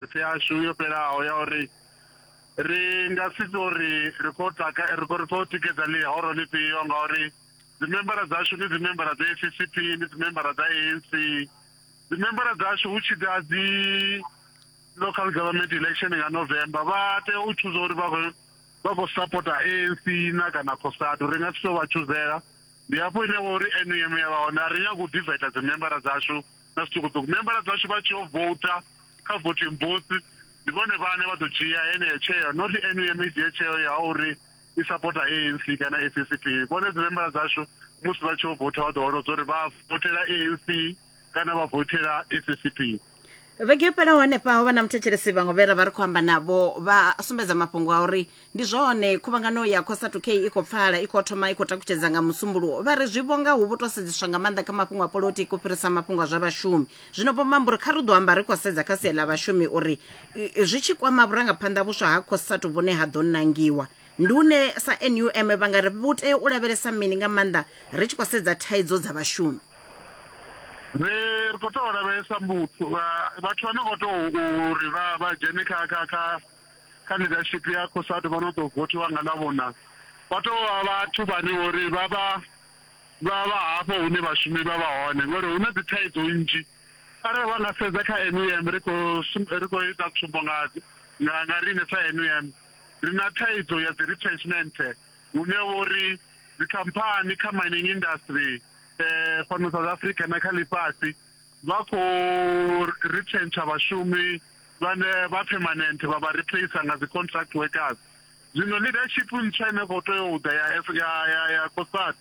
Phetho yashu yo fhelaho ya uri ri nga si tou ri ri khou taka ri khou ri khou tikedza ḽihoro ḽifhio ngauri dzimembara dzashu ndi dzimembara dza FCCP ndi dzimembara dza ANC dzimembara dzashu hu tshi ḓa dzi local government election nga November vha tea u tshuza uri vha khou vha khou sapota ANC na kana Cosatu ri nga si tou vha tshuzela ndi hafho ine vha uri NUM ya vha hone a ri nyagi u divaitha dzimembara dzashu na zwiṱukuṱuku membara dzashu vha tshi yo vouta kha voting booth ndi vhone vhane vha ḓo dzhia heneyo tsheo not num i dzhie tsheo ya uri i sapota anc kana ccp vhone dzi membara dzashu musi vha tshi yo vouta vha ḓo holodza uri vha votela anc kana vha votela ccp vhege yo fhelaho hanefha ho vha na muthetshelesi vhaṅwe vhe ra vha ri khou amba navho vha sumbedza mafhungo a uri ndi zwone khuvhangano ya cosatu k i khou pfala i khou thoma i khou takutshedza nga musumbuluwo vha ri zwi vhonga hu vho tou sedzeswa nga maanḓa kha mafhungo a polotiki u fhirisa mafhungo a zwa vhashumi zwino vho mamba uri kha ri ḓo amba ri khou sedza kha sia ḽa vhashumi uri zwi tshi kwama vhurangaphanḓa vhuswa ha cosatu vhune ha ḓo nangiwa ndi une sa num vha nga ri vhu tea u lavhelesa mini nga maanḓa ri tshi khou sedza thaidzo dza vhashumi ri ri khou tou lavhelesa vhathu vha no khou tou uri vha dzhene kha kha kha kha ḽidashipi ya Cosatu vha no tou vothiwa nga Ḽavhuna vha tou vha vhathu vhane uri vha vha vha vha hafho hune vhashumi vha vha hone ngori hu na dzi thaidzo nnzhi. Arali vha nga sedza kha NUM ri khou ri khou ita tsumbo nga nga nga riṋe sa NUM ri na thaidzo ya dzi retrenchment hune vho ri dzikhamphani kha mining industry fhano South Africa na kha ḽifhasi vha khou retrencher vhashumi vhane vha permanent vha vha replacer nga dzi contract workers zwino leadership ntswa ine khou tea u ḓa ya ya ya ya cosat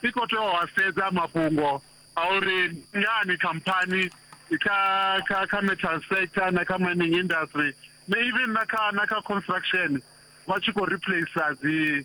i khou tea u a sedza mafhungo a uri ngani khamphani kha kha kha metal sector na kha mining industry na even na kha na kha construction vha tshi khou replacer dzi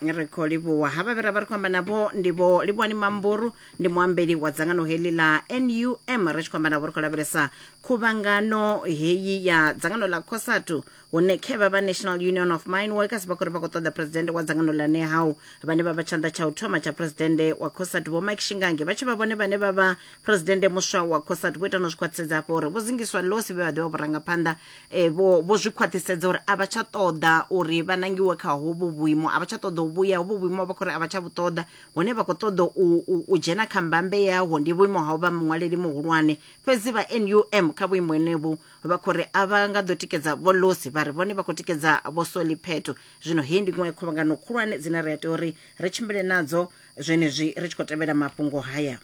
ri khou livhuwa havha vhe ra vha ri khou amba navho ndi vho livhuwani mamburu ndi muambeli wa dzangano heḽi ḽa num ri tshi khou amba navho ri khou lavhelesa khuvhangano heyi ya dzangano ḽa cosatu hune khe vha vha national union of mine workers vha khou ri vha khou ṱoḓa presidente wa dzangano ḽa nehau vhane vha vha tshanḓa tsha u thoma tsha presidente wa cosatu vho mike shingange vha tshi vha vhone vhane vha vha presidente muswa wa cosatu vho ita no zwi khwaṱhisedza hafho uri vho zingiswa losi vhe vha ḓivha vhurangaphanḓa Eh, vho vho zwi khwaṱhisedza uri a vha tsha ṱoḓa uri vha nangiwe kha hovhu vhuimo a vha tsha ṱoḓa u vhuya hovhu vhuimo vha khou ri a vha tsha vhu ṱoḓa hune vha khou ṱoḓa u, u, u dzhena kha mbambe yaho ndi vhuimo ha u vha muṅwaleli muhulwane fhedzi vha num kha vhuimo henevhu vha khou ri a vha nga ḓo tikedza vho losi vha ri vhone vha khou tikedza vho soli pheto zwino heyi ndi iṅwe ya khuvhangano khulwane dzine ri a tea uri ri tshimbile nadzo zwenezwi ri tshi khou tevhela mafhungo haya